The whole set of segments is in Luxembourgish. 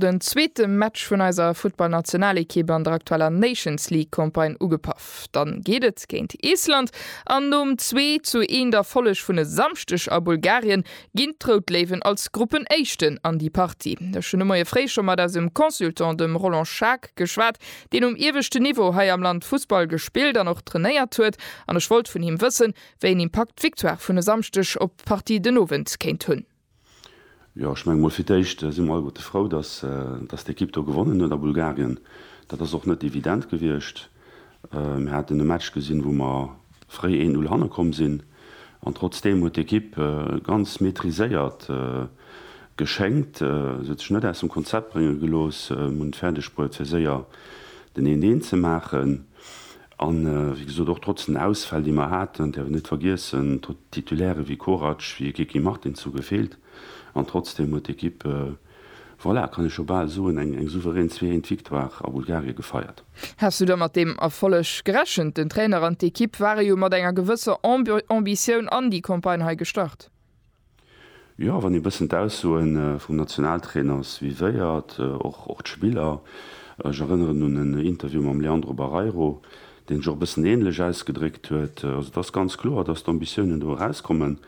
Den zweete Match vun eiser Futtballnationalekipp an der aktueller Nations League Campagne ugepaff. Dann geet et géint Island an nom zwee zu eent Erfolleg vun e Samschdeg a Bulgarien ginn d'Rout Léiwen als Gruppenéischten an déi Partie. Ech hunn de Moie fréi scho mat eisem Consultant, dem Roland Schaack, geschwat, deen um ieweschten Niveau hei am Land Fussball gespillt an och trainéiert huet an ech wollt vun him wëssen, wéi een Impakt d'Victoire vun e Samschdeg op d'Partie den Owend kéint hunn. Jo, ech menge mol fir d'éischt si mer alleguerte frou, datt d'Ekipp do gewonnen huet a Bulgarien. Dat ass och net evident gewiescht. Mir haten e Match gesinn, wou mer fréi 1, 0 hanne komm sinn an trotzdeem huet d'Ekipp ganz maîtriséiert geschéngt. Se huet sech net aus dem Konzept brénge gelooss, hunn et fäerdeg bruet fir séier den 1, 1 ze maachen. A wéi gesot, och trotz den Ausfäll, déi mer haten, däerf een net vergiessen, Titulaire wéi Korac, wéi e Kiki Martins hu gefeelt. An trotzdeem huet d'Equipe, voilà, kann ee scho bal soen, eng souverän Zwee-Eent-Victoire a Bulgarie gefeiert. Häss du da mat deem Erfolleg gerechent? Den Trainer an d'Equipe ware jo mat enger gewësser Ambitioun an déi Campagne hei gestart. Jo, wann ee bëssen d'Aussoe vum Nationaltrainer suivéiert, och d'Spiller, ech erënneren un en Interview mam Leandro Barreiro, deen sech och e bëssen änlech ausgedréckt huet, also et ass ganz kloer, datt d'Ambitiounen do erauskommen.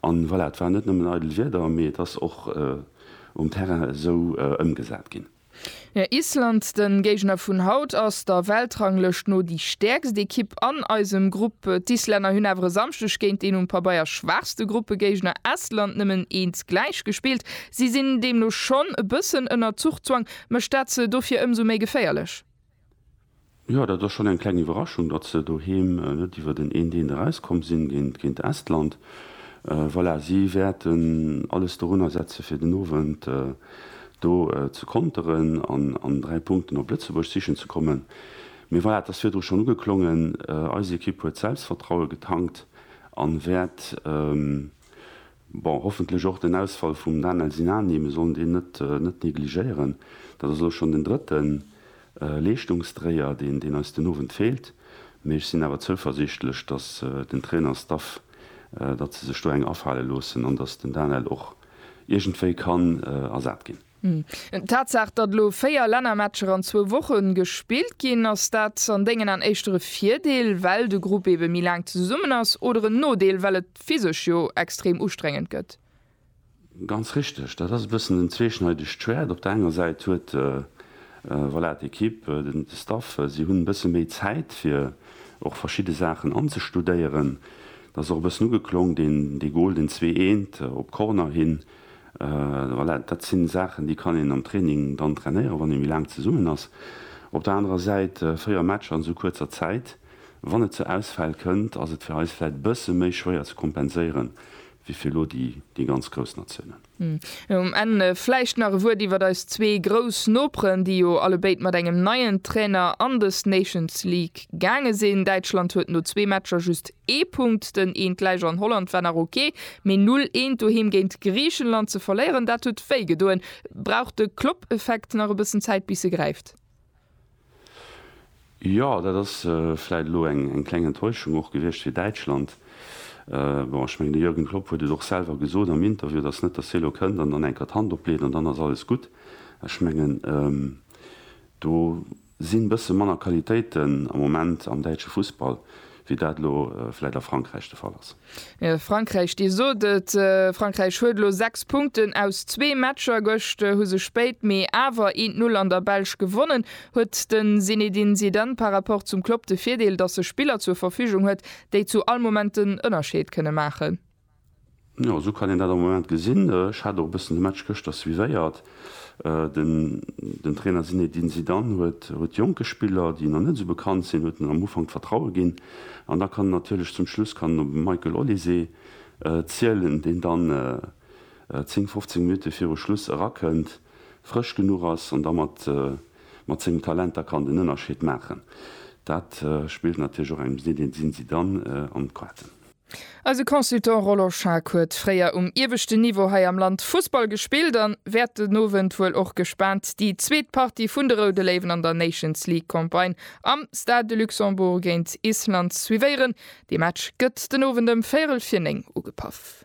An voilà, et waren net nëmmen eidel Wierder, mee et ass och um Terrain esou ëmgesat ginn. Island, den Géigner vun haut, ass der Weltranglëscht no déi stäerkst Ekipp an eisem Grupp. D'Islänner hunn awer e Samschdeg géint deen um Pabeier schwaachste Gruppegéigner Estland nëmmen eens gläich gespillt. Si sinn deemno schonn e bëssen ënner Zuchzwang. Mécht dat se dofir ëmsou méi geféierlech? Jo, dat ass schonn eng kleng Iwwerraschung, datt se doheem net iwwer den een Deen erauskomm sinn géint Estland. Voilà, si wäerten alles dorunner setzen, fir den Owend do ze konteren an an 3 Punkten op Lëtzebuerg sichen ze kommen. Mee voilà, et ass virdru schonn ugeklongen, eis Ekipp huet Selbstvertraue getankt an wäert Bon, hoffentlech och den Ausfall vum Daniel Sinani, mir sollen deen net negligéieren. Dat ass elo schonn den drëtte Leeschtungsdréier, deen eis den Owend feelt. Mee ech sinn awer zouversiichtlech, datt den Trainerstaff, datt se sech do eng afale loossen an datt den Daniel och iergendwéi kann ersat ginn. D'Tatsaach, datt elo 4 Lännermatcher an zwou Woche gespillt ginn, ass dat an dengen An éischter e Virdeel, well de Grupp ebe méi laang zesummen ass, oder en Nodeel, well et physesch jo extrem ustrengend gëtt? Ganz richteg, dat ass e bëssen en zweeschneidegt Schwäert. Op der enger Säit huet, voilà, d'Ekipp, de Staff, si hunn e bësse méi Zäit fir och verschidde Saachen anzestudéieren. Dat ass och e bëssen ugeklong, dee Gol, deen zwee eent op Corner hin, Voilà, dat si Saachen, déi kann een am Training dann trainéieren, wann ee méi laang zesummen ass. Op der anerer Säit, véier Matcher an esou kuerzer Zäit, wann et zu Ausfäll kënnt, ass et fir eis vläicht e bësse méi schwéier ze kompenséieren, wéi fir elo déi ganz grouss Natiounen. Um Enn vläicht nach e Wuert iwwert eis zwee grouss Noperen, déi jo allebéid mat engem neien Trainer an des Nations League gaange sinn. Däitschland huet no zwee Matcher just Ee Punkt, den eent gläich an Holland war nach ok, mee null eent doheem géint Griichenland ze verléieren, dat huet wéi gedoen. Brauch de Klopp-Effekt nach e bëssen Zäit bis e gräift? Jo, dat ass vläit elo eng kleng Enttäuschung och gewiescht fir Däitschland. Bon, ech mengen de Jürgen Klopp huet et och selwer gesot am Interview, et ass net, datt hie elo kënnt an dann eng Kéier d'Hand opleet an dann ass alles gutt. Ech mengen do Sinn bësse manner Qualitéiten am Moment am däitsche Fussball, wéi dat elo vläit a Frankräich de Fall ass? Frankräich, Dir sot et, Frankräich huet elo 6 Punkten aus zwee Matcher. Gëscht hu se spéit mee awer een d'Null an der Belsch gewonnen. Huet de Zinedine Zidane par Rapport zum Klopp de Virdeel, datt e Spiller zur Verfügung huet, déi zu all Moment den Ënnerscheed kënne maachen? Jo, esou kann een dat am Moment gesinn. Ech hat och e bëssen de Match gëschter suivéiert. Den Trainer Zinedine Zidane huet jonke Spiller, déi nach net esou bekannt sinn, huet en am Ufank d'Vertraue ginn. An da kann en natierlech zum Schluss kann en op de Michael Olise zielen, deen dann 10, 15 Minutte viru Schluss erakënnt, frësch genuch ass an da mat sengem Talent da kann den Ënnerscheed maachen. Dat spillt natierlech och engem Zinedine Zidane an d'Quaten. Eise Consultant Roland Schaack huet fréier um ieweschten Niveau hei am Land Fussball gespillt an wäert den Owend wuel och gespaant déi zweet Partie vun de Roude Léiwen an der Nations League Campagne am Stade de Luxembourg géint Island suivéieren. Dee Match gëtt den Owend ëm véierel vir néng ugepaff.